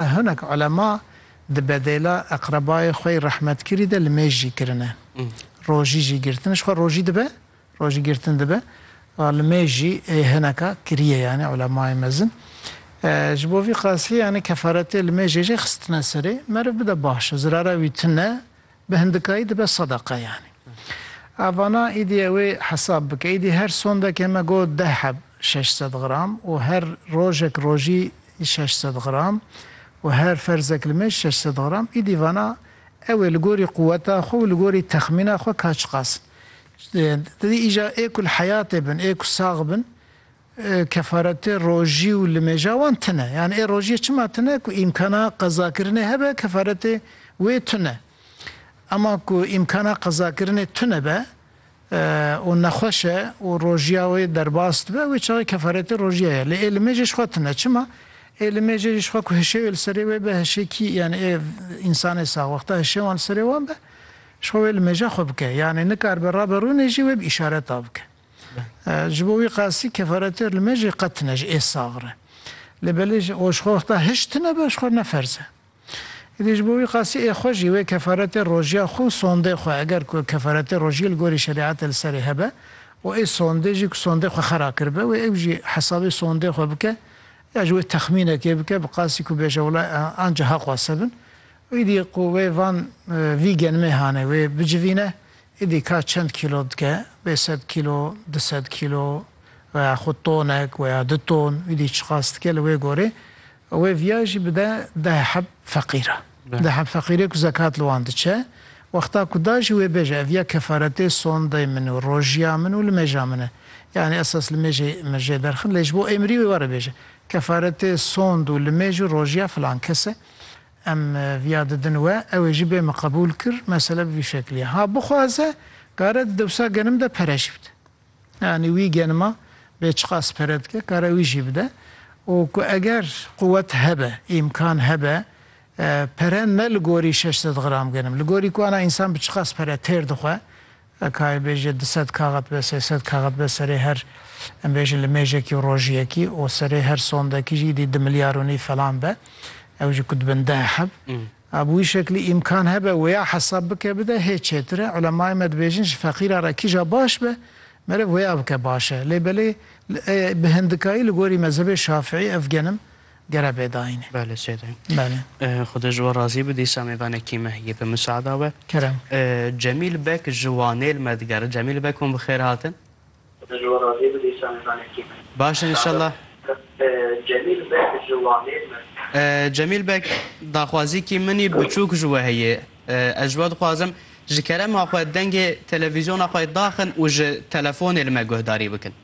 Hinek ulema di bedêla eqrebayê xwey rehmetkirî de li mêj jî kirine. Rojî jî girtin ji xwe rojî dibe, rojî girtin dibe. Wa li mêj jî ê hineka kiriye yanî ulemayê mezin. Ji bo vî qasî yanî kefaretê li mêjê jî xistine serê. Meriv bide baş e, zirara wî tune, Bi hindikayî dibe sedeqe yanî. A vana îdî ew ê hesab bike. Îdî her sondekê me got deh heb şeş sed gram û her rojek rojî şeş sed gram û her ferzek li mêj şeş sed gram. Îdî vana ew ê li gorî quweta xwe û li gorî texmîna xwe ka çiqas in. Îdî îja ê ku li heyatê bin, ê ku sax bin Kefaretê rojî û limêja wan tune. Yan ê rojiyê çima tune ku îmkana qezakirinê hebe kefaretê wê tune. Ema ku îmkana qezakirinê tunebe û nexweş e û rojiya wê derbas dibe wê çaxê kefaretê rojiye ye. Lê ê limêjê jixwe tune. Çima? Ê limêjê jî jixwe ku hişê wê li serê wê be hişê kî yanî ê însanê saxwexta hişê wan li serê wan be jixwe wê limêja xwe bike. Yanî nikaribe rabe rûnê jî wê bi îşareta bike. Ji bo wî qasî kefaretê li me jî qet tine ji ê sax re. Lê belê ji oj xwe wexta hişt tine be ji xwe ne ferz e. Îdî ji bo wî qasî ê xwe jî wê kefaretê rojiya xwe û sondê xwe eger ku kefaretê rojiyê li gorî şerîetê li serê hebe û ê sondê jî ku sondê xwe xera kiribe wê ew jî hesabê sondê xwe bike ya ji wê texmînekê bike bi qasî ku bêje wela anca haq wase bin û îdî ku wê van vî genimê hane wê bicivîne Êdî ka çend kîlo dike, bê sed kîlo, du sed kîlo veya xwe tonek veya du ton êdî çiqas dike li wê gorê wê viya jî bide deh heb feqîra. Deh heb feqîrê ku zekat li wan diçe wexta ku da jî wê bêje ev ya kefaretê sondeyê min û rojiya min û limêja min e. Yanî esas limêjê min jê derxin lê ji bo êmirî wê were bêje kefaretê sond û limêj û rojiya filan kes e. Em viya didin we, ew ê jî bê min qebûl kir, mesele bi vî şeklî ye. Ha bixwaze kare di dewsa genim de pere jî bide. Yanî wî genima bê çiqas pere dike kare wî jî bide û ku eger quwet hebe, îmkan hebe pere ne li gorî şeş sed gram genim, li gorî ku ana însan bi çiqas pere têr dixwe, Ekayê bêje du sed kaxet be, sê sed kaxet be serê her em bêjin limêjekî û rojiyekî û serê her sondekî jî îdî du milyar û nîv falan be. Ew jî ku dibin deh heb. A bi wî şeklî îmkan hebe wêya hesab bike bide hê çêtir e. Ulemayê me dibêjin ji feqîra re kîja baş be meriv wêya bike baş e. Lê belê bi hindikayî li gorî mezhebê şafiî ev genim Gere bê dayînê. Bele sê dayîn. Bele. Xuda ji we razî bi dîsa mêvanê kîmeh yê bi miseada we. Kerem. Cemîl Bek ji Wanêl me digere. Cemîl Bek hûn bi xêr hatin. Xuda ji we razî bi dîsa mêvanê kîmeh yê. Baş in înşallah. Cemîl Bek ji Wanêl me digere. Cemîl Bek daxwazîkî min î biçûk ji we heye. Ez ji we dixwazim ji kerema xwe dengê televîzyona xwe daxin û ji telefonê li me guhdarî bikin.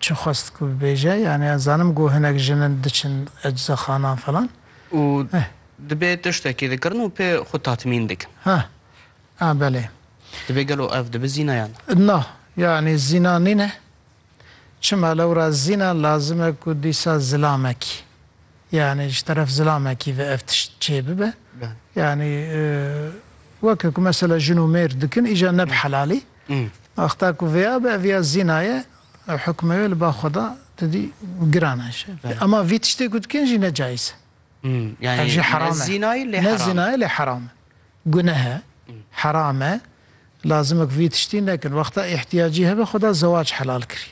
Çi xwest ku bibêje? Yanî ez zanim ku hinek jin in diçin eczaxanan filan. Û dibê tiştekî dikirin û pê xwe tatmîn dikin. Ha, ha belê. Dibê gelo ev dibi zîna ya ne? Na, yanî zîna nîne. Çima lewra zîna lazim e ku dîsa zilamekî, yanî ji teref zilamekî ve ev tişt çê bibe. Yanî weke ku mesela jin û mêr dikin îcar ne bi helalî. Wexta ku vêya be ev ya zîna ye ew hukmê wê li ba xwe da tu dî giran e ji ema vî tiştê ku dikin jî ne cayîz e. Ev jî heram e. Ne zîna ye lê heram e. Guneh e. Heram e. Lazim e ku vî tiştî nekin. Wexta îhtiyacî hebe xwe da zewac helal kirî.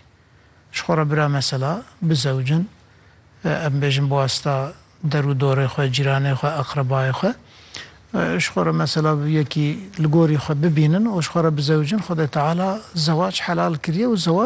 Ji xwe re bira mesela bizewicin, em bêjin bi wasta der û dorê xwe, cîranê xwe, eqrebayê xwe. Ji xwe re mesela bi yekî li gorî xwe bibînin û ji xwe re bizewicin, Xwedê Teala zewac helal kiriye û zewac,